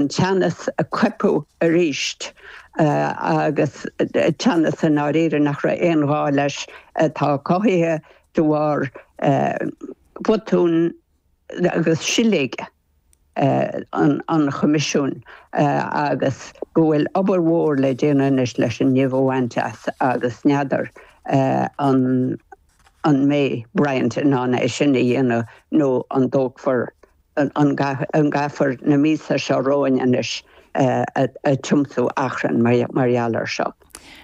teannas a coipeadh arís agus teannas i ndáiríre nach raibh aon ghá leis atá cothaithe de bharr bhotún agus siléige an Choimisiúin agus go bhfuil obair mhór le déanamh anois leis an nimh a bhaint as agus n'fheadar an mbeidh Bryant in ann é sin a dhéanamh nó an dtógfar an gcaithfear na míosa seo romhainn anois ag tiomsú achrainn mar gheall air seo?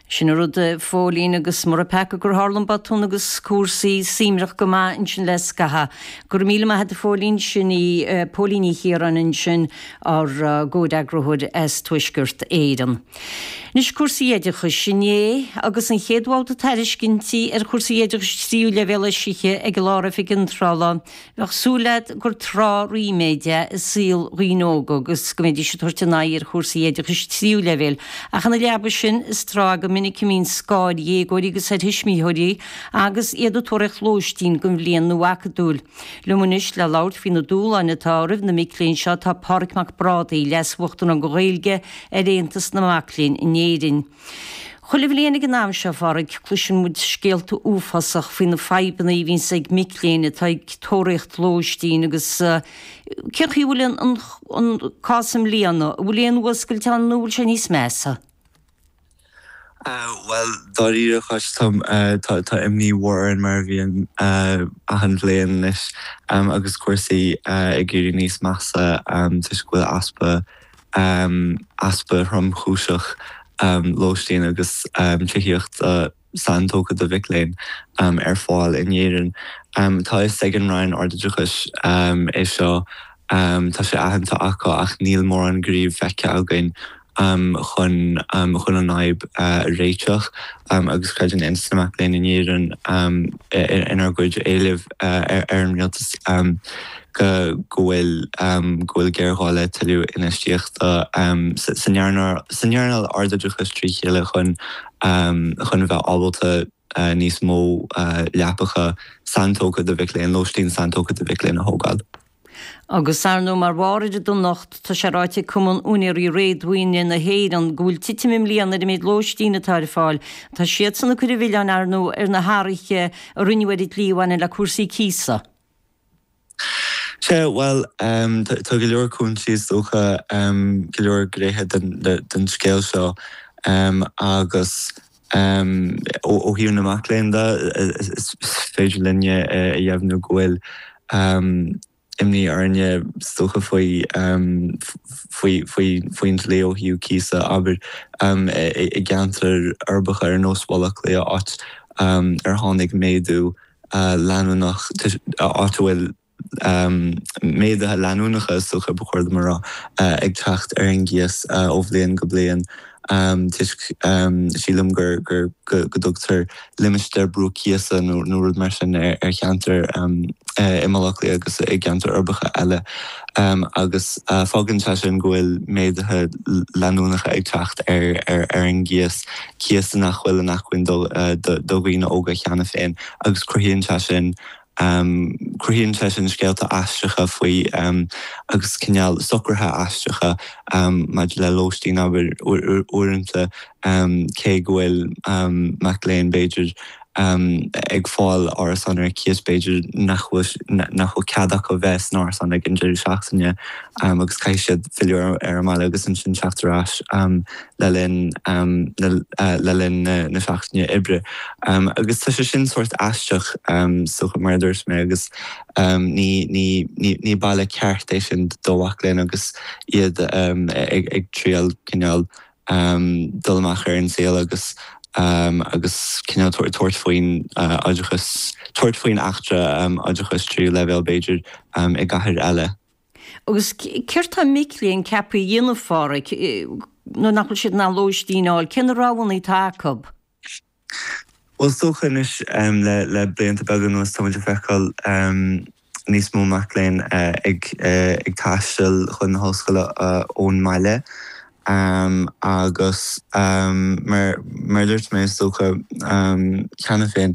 Sin an rud, a Phóilín, agus mór an peaca gur tharla an botún agus cúrsaí suímreach go maith ansin le scaitheamh. Go raibh míle maith a'd, a Phóilín, sin í Póilín Ní Chiaráin ansin, ár gcomhfhreagrathóir as Tuaisceart Éireann. Anois, cúrsaí oideachais. Inné, agus an chéad bhabhta tairiscintí ar chúrsaí oideachais tríú leibhéal eisithe ag an Lár-Oifig Iontrála, Bheadh súil leat gur tráth ríméid é i saol dhaoine óga agus go mbeidís ag tabhairt a n-aghaidh ar chúrsaí oideachais tríú leibhéil, ach ina leaba sin, is tráth é go minic a mbíonn scáth ar dhéagóirí agus ar thuismitheoirí agus iad ag tóraíocht lóistín don bhliain nua acadúil. Liom anois le labhairt faoi na dúshláin atá roimh na mic léinn seo tá Pádraig Mac Brádaigh, Leas-Uachtarán Gaeilge ar Aontas na Mac Léinn in Éirinn. Chuile bhliain ag an am seo, a Phádraig, cloiseann muid scéalta uafásach faoi na fadhbanna a bhíonns ag mic léinn atá ag tóraíocht lóistín agus cén chaoi a bhfuil an cás i mbliana, an bhfuil aon fhuascailt ann nó an bhfuil sé níos measa? Bhuel, dáiríre Cháit, tá imní mhór orainn mar a bhíonn achan bhliain anois agus cúrsaí ag éirí níos measa toisc go bhfuil easpa amh, easpa thromchúiseach lóistín agus tithíochta saintógtha do mhic léinn ar fáil in Éirinn. Tá a fhios ag an Roinn Ardoideachais é seo, tá sé aitheanta acu, ach níl mórán gnímh feicthe againn chun chun an fhadhb a réiteach agus creideann Aontas na Mac Léinn in Éirinn inár gcuid éileamh ar an Rialtas. go go bhfuil go bhfuil géarghá le tuilleadh infheistíochta san earnáil san earnáil ardoideachais trí chéile chun chun a bheith ábalta níos mó leapacha saintógtha do mhic léinn, lóistín saintógtha do mhic léinn a thógáil. Agus ar ndóigh, mar bharr ar an donacht, tá sé ráite ag Cumann Úinéirí Réadmhaoine na hÉireann go bhfuil titim i mbliana ar an méid lóistín atá ar fáil. Tá siadsan ag cur an mhilleáin, ar ndóigh, ar na hathruithe a rinneadh ar an dlí a bhaineann le cúrsaí cíosa. Sea, bhuel, tá go leor cúinsí, is dócha, go leor gnéithe den scéal seo agus ó thaobh na mac léinn de, is féidir linn a dheimhniú go bhfuil imní orainne, is dócha, faoin dlí ó thaobh cíosa, abair, i gceantair uirbeacha ar nós Bhaile Átha Cliath, áit ar tháinig méadú. leanúnach, áit a bhfuil méaduithe leanúnacha, is dócha ba chóir dom a rá, ag teacht ar an gcíos ó bhliain go bliain toisc, sílim, go dtugtar limistéar brú cíosa nó rud mar sin ar cheantair i mBaile Átha Cliath agus i gceantair uirbeacha eile agus fágann sé sin go bhfuil méaduithe leanúnacha ag teacht ar an gcíos. cíosa nach bhfuil in acmhainn do dhaoine óga cheana féin agus cruthaíonn sé sin cruthaíonn sé sin scéalta aisteacha faoi agus cineál socruithe aisteacha maidir le lóistín abair uaireanta cé go bhfuil mac léinn b'fhéidir amh ag fáil árasáin ar cíos b'fhéidir nach bhfuil nach bhfuil cead acu bheith san árasán ag an deireadh seachtaine amh agus caithfidh siad filleadh ar ar an mbaile agus ansin teacht ar ais amh le linn amh na eh le linn na na seachtaine oibre amh agus tá sé sin sórt aisteach amh so mar a dúirt mé agus amh ní ní ní ní baile ceart é sin do mhac léinn agus iad amh ag ag triail cineál um dul amach ar an saol agus um agus cineál tabhairt tabhairt faoin uh oideachas tabhairt faoin eachtra um oideachais tríú leibhéal b'fhéidir um i gcathair eile. Agus céard tá mic léinn ceaptha a dhéanamh Phádraig nuair nach bhfuil siad in ann lóistín a fháil, cé na roghanna atá acu? Bhuel is dócha anois le blianta beaga anuas táimid ag feiceáil níos mó mac léinn ag taisteal chun na hollscoile ón mbaile agus mar a dúirt mé is dócha cheana féin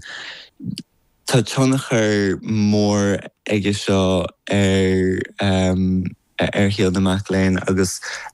tá tionchar mór aige seo ar shaol na mac léinn agus